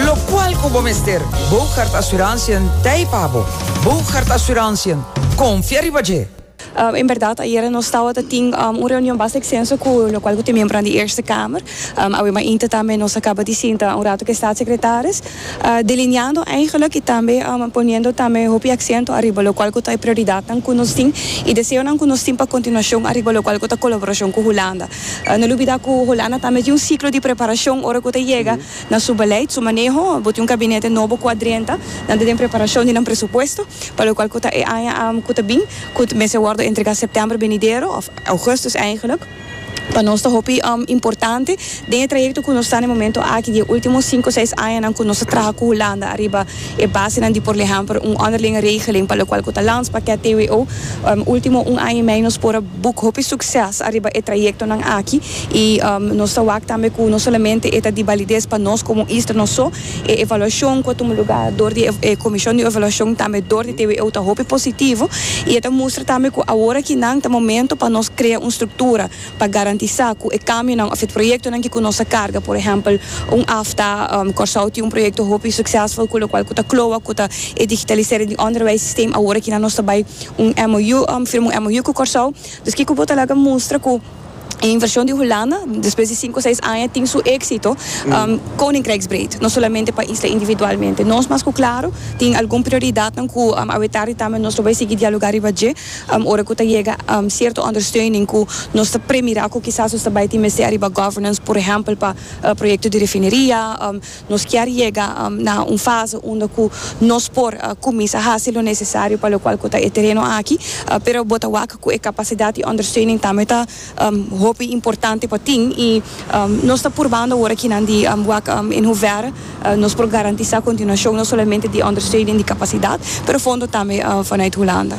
Locual cu bo mester. Boogaard Assurantiën t'ei pa bo. Boogaard Assurantiën, confia riba dje! En berdad, ayera nos tawata tin un reunion basta extenso cu locual cu ta e miembronan di Eerste Kamer. Awe mas inter tambe nos a caba di sinta un rato cu e Staatssecretaris, delineando eigenlijk y tambe poniendo tambe hopi accento ariba locual cu ta e prioridadnan cu nos tin y deseonan cu nos tin pa continuacion ariba locual cu ta colaboracion cu Hulanda. No lubida cu Hulanda tambe tin un ciclo di preparacion ora cu ta yega. na su beleid, su maneho, bo tin un kabinete nobo kua drenta, nan ta den preparashon di nan presupuesto, pa lokual ku ta e aña ku ta bin, ku mester wòrdu entregá sèptèmber benidero, òf ougùstus eingèlik. Pa nos ta hopi importante den e trayekto ku nos ta na e momentu aki di e último sinku seis añanan ku nos ta traha ku Hulanda ariba e basenan di por lehèmpel un onderlinge regeling pa lokual ku ta landspakket TWO. Último un aña i mei nos por a buk hopi sukses ariba e trayektonan aki. y nos ta wak tambe cu no solamente e ta di balides pa nos como un isla no so, e evaluacion cu a tuma luga door di e comision di evaluacion tambe door di TWO ta hopi positivo y e ta mustra tambe cu awor aki nan ta momento pa nos crea un structura pa garantisa cu e cambionan of e proyectonan ki cu nos a carga por ehempel un afta Corsou tin un proyecto hopi succesful cu locual cu ta cloa cu ta e digitalisering di onderwijs systeem awor aki nan nos ta bay un MOU firma un MOU cu Corsou dus kico bo ta laga mustra cu. E invershon di Hulanda, despues di sinku seis aña, tin su éksito koninkrijksbreed, no solamente pa isla individualmente. Nos mas ku klaru tin algun prioridatnan ku awetar i tambe nos lo bai sigui dialogá riba dje ora ku ta yega sierto ondersteuning ku nos ta premirá ku kisas nos ta bai tin mester ariba governance, por ehèmpel pa proyekto di refineria. Nos kier yega na un fase unda cu nos por cuminsa haci lo necesario pa locual cu ta e tereno aki, pero bo ta wak cu e capacidad y ondersteuning tambe ta hopi importante pa tin y nos ta purbando awor akinan di wak in hoeverre nos por garantisa continuacion no solamente di ondersteuning di capacidad pero fondo tambe vanuit Hulanda.